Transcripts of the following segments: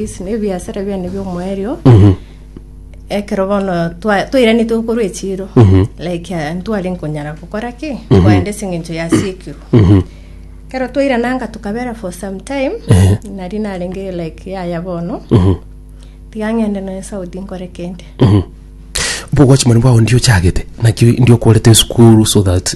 Ase nebiasara biane bi'omoerio ekero bono twa- twairanete gokorwa echiiro like eh, ntware nkonyara gokora ki koenda ase eng'encho yasiekirwe ekero twairananga tokabera for some time nari narenge like yaya bono tiga ng'ende nonya saudi nkore kende Mbogochimani bwao ndiochagete naki ndiokorete esukuru so that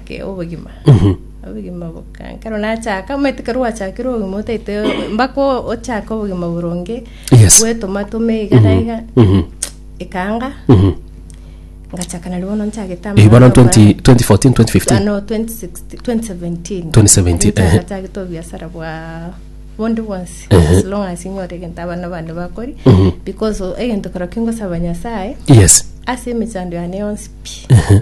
ke obogima obogima boka nkero nachaka omanyete kero gwachakire obogima otaite mpaka ochake obogima boronge Yes. gwetoma toma iga na iga Mhm. ekanga Mhm. ngachaka nari bono nchagete Eh, bono amang'ana 20 maya. 2014 2015 ano 2016 2017 2017, Nari ehe. nchagete obiasara bwa bondi bwonsi Ehe. as long as inyore egento abana bane bakori Mhm. because o- egento kero kingosaba nyasaye yes ase emechando yane yonsi pi Ehe.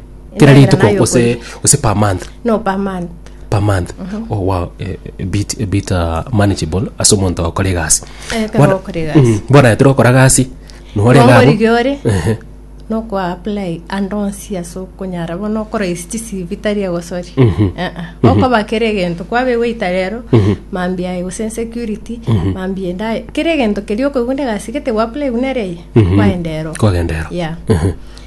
Kera Endagera rituko nayo ose okoria. ose per month no per month per month oh wow eh, a bit a bit uh, manageable ase omonto okora egasi Eh, ekero Bona- okora egasi. Mm, bona etera okora gasi nore Nongo gabo rigia ore Ehe. nokwa apply ande onsi ase okonyara bono okoraisi chisibi tari egosori okoba kera egento kwabe waita rero mambi aye gose insecurity mambi ende aye kera egento keria okoigwa nde egasi gete gwa apply buna ere eye kwaenda ero kwagendero ya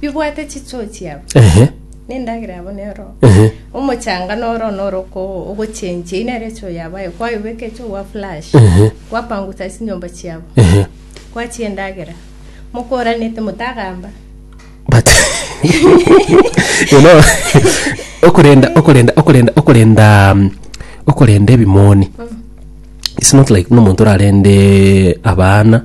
bibwate chichoo chiabo, Ehe. na endagera yabo nero. Ehe. Omochanga noro noro oko- ogochenchia, eye nere echoo yabo, aye kwayobeka echoo gwa flash, Ehe. kwapangusa ase chinyomba chiabo, Ehe. kwachia endagera, mokoranete motagamba. But you know okorenda okorenda okorenda okorenda um, okorenda ebimoni it's not like nomonto orarende abana